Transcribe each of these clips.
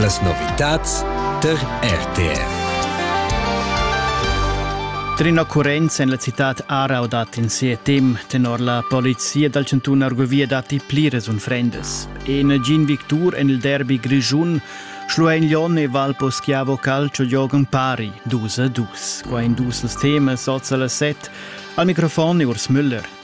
Las novitads tar RTR. Trina Currenz en la citad Arau dat in ses temp tenor la polizia dal chantun Argovia datti pliras unfrendas. En Gin Victur en il derby grischun Schlueignon e Valpo Schiavo Calcio giogan pari 2 a 2. Qua in dus els temas oz a las 7. Al microfon Urs Müller.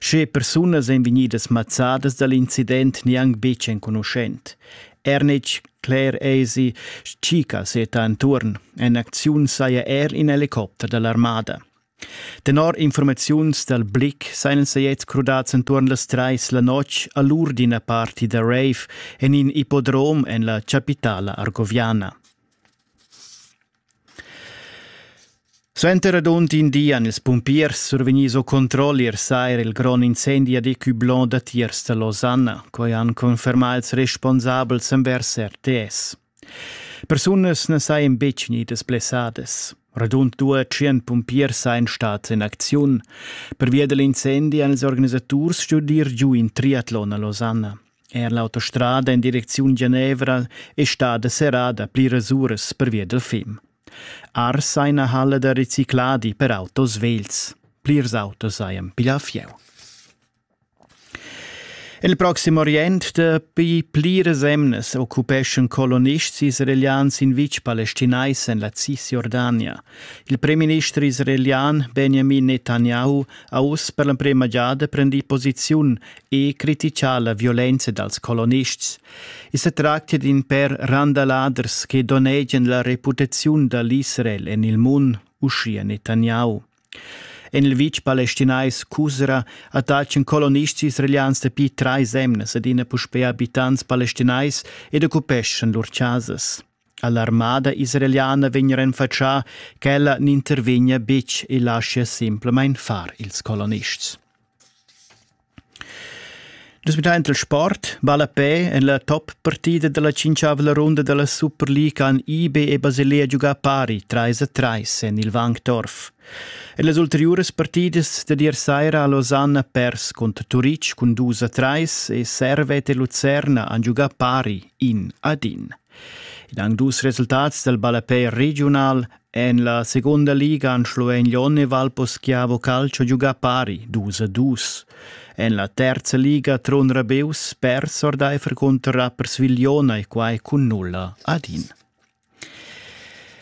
Sche persunas ein vegnidas mazzadas dall'incident gnanc buc enconuschent. Ernitsch, Claire Eisi, Chica seta entuorn. En acziun saja er in helicopter dall'armada. Tenor informaziuns dal Blick seien sei jetzt crudats entuorn las treis la notg a l'ur d'ina parti da rave en in ippodrom en la chapitala argoviana. Suenter radund in di han ils pumpiers survegnì sco controll ier saira il grond incendi a Deccublon datiers da Losanna. Quai han confermà ils responsabels envers RTS. Persunas na sajan betg vegnidas blessadas. Radund due tschient pumpiers sajan stads en acziun. Pervia da l'incendi han ils organisaturs stuì ir giu in triatlon a Losanna. Er l'autostrada in direcziun Genevra è stada serrada pliras uras pervia dal fim. Ars ha ina halla da recicladi per autos vegls. Plirs autos hajan piglià fieu. Il proxim Orient dapi pliras emnas occupeschan colonists israelians in vitg palestinais en la Cisjordania. Il premierminister israelian Benjamin Netanyahu ha uss per l'emprima giada prendì posiziun e critica la violenza dals colonists. I se tractia d'in per randaladers che donnegian la reputaziun da l'Israel en il mund, uschia Netanyahu. En il vitg palestinais Cusra attaccan colonists israelians dapi trais emnas adina puspè abitants palestinais ed occupeschan lur chasas. All'armada israeliana vegn renfatschà ch'ella n'intervegna betg e laschia simplamain far ils colonists. Nus midain il sport ballapè en la top-partida da la tschintgavla runda da la Superliga han IB e Basilea giugà pari trais a trais en il Wankdorf. En las ulteriuras partidas dad ier saira ha Losanna pers cunter Turitg cun dus a trais e Servet e Lucerna han giugà pari in ad in. Ed anc dus resultats dal ballapè regiunal en la segunda liga han Schluein-Lyon e Valposchiavo Calcio giugà pari dus a dus. En la terza liga Trun Rabeus pers ordaifer cunter Rapperswil Jona e quai cun nulla ad in.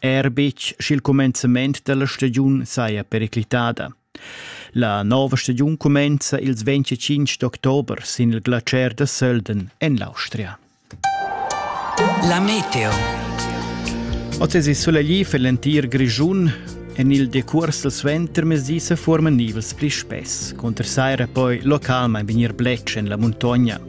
Er betg sch'il cumenzament da la stagiun saja periclitada. La nova stagiun cumenza ils 25 d'october sin il glacier da Sölden en l'Austria. La meteo. Oz è sulegli per l'entir Grischun. En il decurs dal suentermezdi sa forman nivels pli spess. Cunter saira poi localmain vegnir bletsch en la muntogna.